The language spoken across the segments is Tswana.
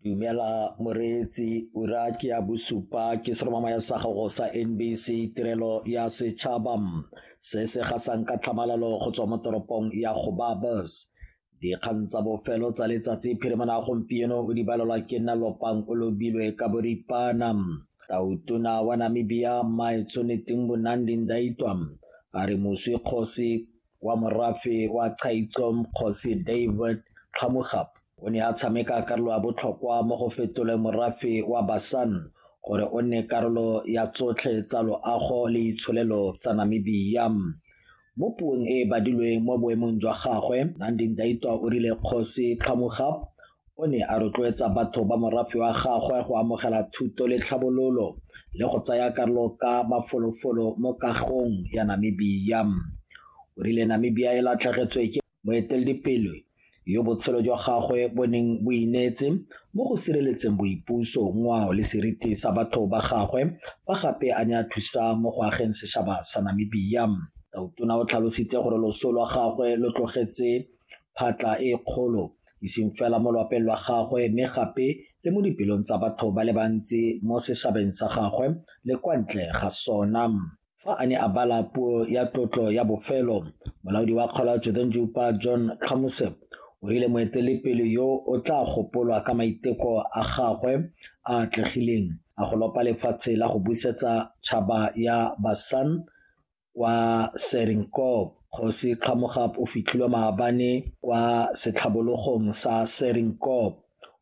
Dumela moreetsi ura ke ya bosupa ke seromamaya sa gago sa NBC tirelo ya setšhaba se se gasang ka tlhamalalo go tswa mo toropong ya Gobabos dikgang tsa bofelo tsa letsatsi phirimana gompieno o di balelwa ke nna lopang o lobilwe ka boripana tautona wa namibia maetsoneteng bonandi ndaitwa a re moswi kgosi wa morafe wa Chaitsom Kgosi David Kgamogapo o ne a tshameka karolo ya botlhokwa mo go fetoleng morafe wa Basan gore o nne karolo ya tsotlhe tsa loago le itsholelo tsa Namibia. Mo puong e e badilweng mo boemong jwa gagwe, Nandi Ndaitwah o rile Kgosi Kgamogapo O ne a rotloetsa batho ba morafe wa gagwe go amogela thuto le tlhabololo le go tsaya karolo ka mafolofolo mo kagong ya Namibia. O rile Namibia e latlhegetswe ke moeteledipele yo botshelo jwa gagwe bo neng bo ineetse mo go sireletseng boipuso, ngwao le seriti sa batho ba gagwe fa gape a ne a thusa mo go ageng setšhaba sa Namibia. Tautona o tlhalositse gore loso lwa gagwe lo tlogetse phatla e kgolo e seng fela mo lwapeng lwa gagwe mme gape le mo dipelong tsa batho ba le bantsi mo seshabeng sa gagwe le kwa ntle ga sona. Fa a ne a bala puo ya tlotlo ya bofelo, molaodi wa kgolo Jodenjupa John Khamuse o rile moetelepele yo o tla gopolwa ka maiteko a gagwe a atlegileng a go lopa lefatshe la go busetsa tšhaba ya Basan kwa Serinkob. Kgosi Kgamogab o fitlhilwe maabane kwa setlhabologong sa Serinkob.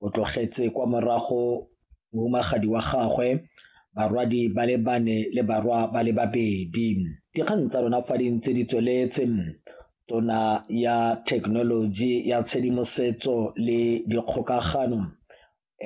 O tlogetse kwa morago mohumagadi wa gagwe, barwadi ba le bane le barwa ba le babedi. Dikgang tsa rona fa di ntse di tsweletse tona ya thekenoloji ya tshedimosetso le dikgokagano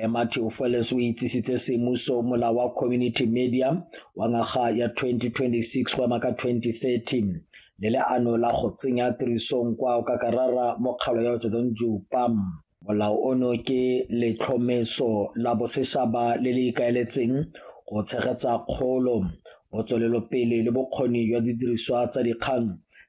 Matthew Feles o itsisitse semuso mola wa community media wa ngwaga ya 2026 go ema ka 2030 le leano la go tsenya tirisong kwa o ka karara mokgalo ya Jordan Jupam. Molao ono ke letlhomeso la boseshaba le le ikaeletseng go tshegetsa kgolo, botswelelopele le bokgoni jwa didiriswa tsa dikgang